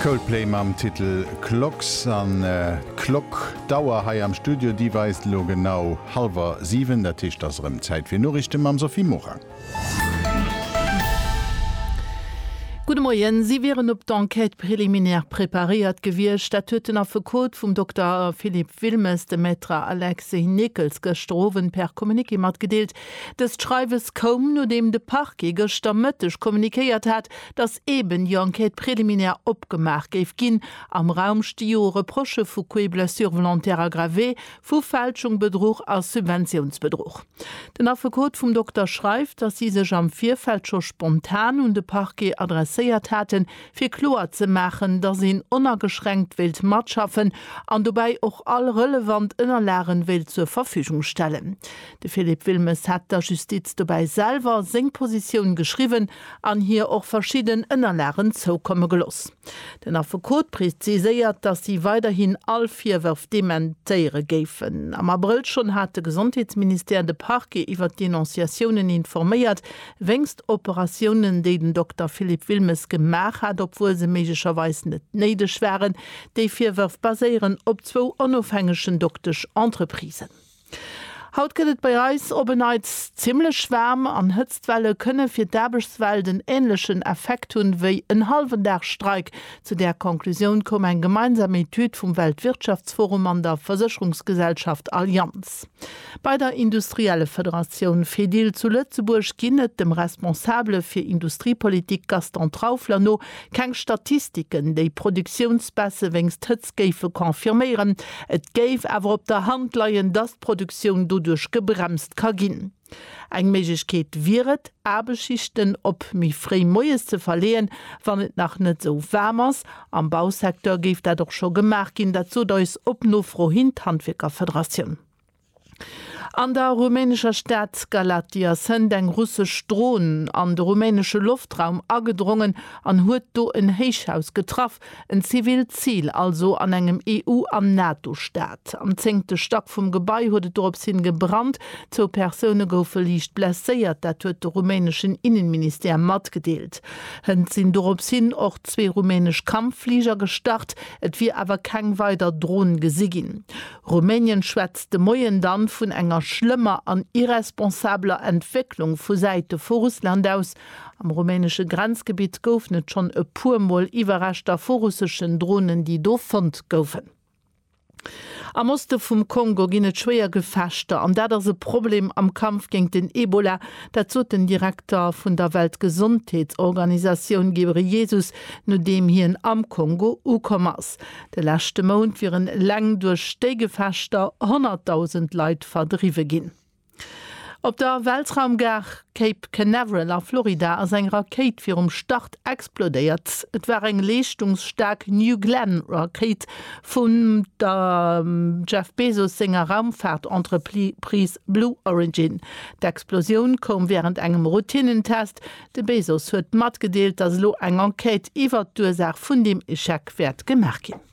Coldplay mam Titel Clocks. An d'Klock, d'Auer hei am Studio, déi weist elo genau hallwer siwen. Dat heescht, et ass erëm Zäit fir Noriichte mam Sophie Morang. Gudde Moien. Si wieren op d'Enquête préliminaire preparéiert gewiescht. Dat huet den Affekot vum Dokter Philippe Wilmes, de Maître Alexis Nickel, gëschter Owend per Communiqué matgedeelt. Dëst Schreiwes koum, nodeem de Parquet gëschter Mëtteg kommunikéiert hat, datt eeben déi Enquête préliminaire opgemaach géif ginn. Am Raum sti jo Reprochë vu Coups et blessures volontaires aggravés, vu Fälschung, Bedruch a Subventiounsbedruch. Den Affekot vum Dokter schreift, datt si sech am Virfeld scho spontan un de Parquet adresséiert haten, fir kloer ze maachen, datt een onageschränkt wéilt matschaffen an dobäi och all relevant Ënnerlage wéilt zur Verfügung stellen. De Philippe Wilmes hat der Justiz dobäi selwer seng Positioun geschriwwen an hir och verschidden Ënnerlagen zoukomme geloss. Den Affekot preziséiert, datt si weiderhin all Virwërf dementéiere géifen. Am Abrëll schonn hat de Gesondheetsministère de Parquet iwwer d'Denonciatiounen informéiert, wéinst Operatiounen, déi den Dokter Philippe Wilmes gemaach hat, obwuel se méiglecherweis net néideg waren. Déi Virwërf baséieren op zwou onofhängegen Doktesch-Entreprisen. Haut gëtt et bei eis op en Neits zimmlech waarm an Hëtztwelle kënne fir d'Aarbechtswelt en änlechen Effekt hunn, wéi en hallwen Dag Streik. Zu där Conclusioun koum eng gemeinsam Etüd vum Weltwirtschaftsforum an der Versécherungsgesellschaft Allianz. Bei der Industriellefederatioun Fedil zu Lëtzebuerg ginn et, dem Responsabele fir Industriepolitik Gaston Traufler no, keng Statistiken, déi Produktiounsbaisse wéinst Hëtztwelle Facts géife confirméieren. Et géif awer op der Hand leien, datt d'Produktioun doduerch gebremst ka ginn. Eng Méiglechkeet wier et, Aarbechtsschichten op méi fréi moies ze verleeën, wann et nach net esou waarm ass. Am Bausecteur géif dat och scho gemaach ginn. Dat sot eis op Nofro hin d'Handwierkerfederatioun. An der rumänescher Stad Galaţi ass hënt eng russesch Dron an de rumänesche Loftraum agedrongen an huet do en Héichhaus getraff, en zivilt Zil also an engem EU an NATO-Staat. Am zéngte Stack vum Gebai huet et dorops hin gebrannt, zwou Persoune goufe liicht blesséiert, dat huet de rumäneschen Innenministère matgedeelt. Hënt sinn dorops hin och zwee rumänesch Kampffliger gestart, et wier awer keng weider Dron gesi ginn. Rumänien schwätzt de Moien dann vun enger schlëmmer an irresponsabeler Entwécklung vu Säite vu Russland aus. Am rumänesche Grenzgebitt goufen et schonn e puer Mol Iwwerreschter vu russeschen Dronen, déi do fonnt goufen. Am Oste vum Kongo ginn et schwéier Gefechter an dat ass e Problem am Kampf géint den Ebola. Dat sot den Direkter vun der Weltgesondheetsorganisatioun Ghebreyesus, nodeem hien am Kongo ukomm ass. De leschte Mount wieren eleng duerch déi Gefechter 100.000 Leit verdriwwe ginn. Op der Weltraumgare Cape Canaveral a Florida ass eng Rakéit virum Start explodéiert. Et war eng leeschtungsstaark New Glenn Rakéit vum der Jeff Bezos senger Raumfaart-Entreprise Blue Origin. D'Explosioun koum wärend engem Routinnentest, De Bezos huet matgedeelt, datt elo eng Enquête iwwert d'Ursaach vun deem Echec wäert gemaach ginn.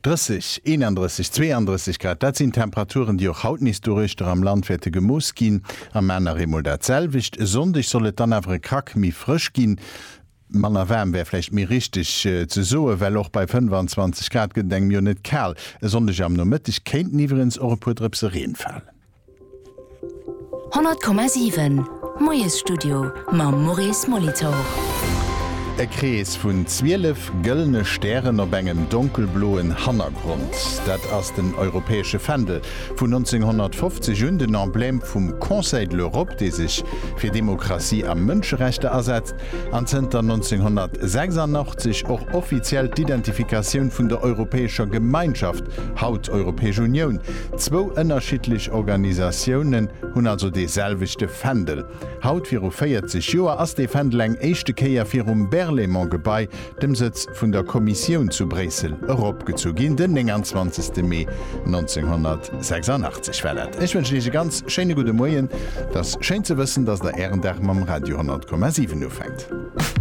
30, 31, 32 Grad, dat sinn Temperaturen, déi och haut nees doruechter am Land wäerte gemooss ginn. Am Maarn nach eemol dat selwecht. E Sonndeg soll et dann awer e Krack méi frësch ginn. Manner waarm wär vläicht méi richteg ze soen, well och bei 25 Grad gëtt et engem jo net kal. E Sonndeg am Nomëtteg kéinten iwweregens och e puer Drëpse Reen falen. 100,7 Moiesstudio mam Maurice Molitor. E Krees vun 12 gëllene Stären op engem donkelbloen Hannergrond, dat ass den europäesche Fändel. Vun 1950 un den Emblème vum Conseil de l'Europe, dee sech fir Demokratie a Mënscherechter asetzt. an zënter 1986 och offiziell d'Identifikatioun vun der Europäescher Gemeinschaft, haut Europäesch Unioun. Zwou ënnerschiddlech Organisatiounen hunn also dee selwechte Fändel. Haut viru 40 Joer ass dee Fändel eng éischte Kéier virum Berlaymont-Gebai dem Sëtz vun der Kommissioun zu Bréissel, eropgezu ginn, den 29. Mee 1986. Voilà, ech wënschen Iech e ganz schéine gudde Moien. Et ass schéin ze wëssen, dass Der Ären Dag mam Radio 100,7 ufänkt.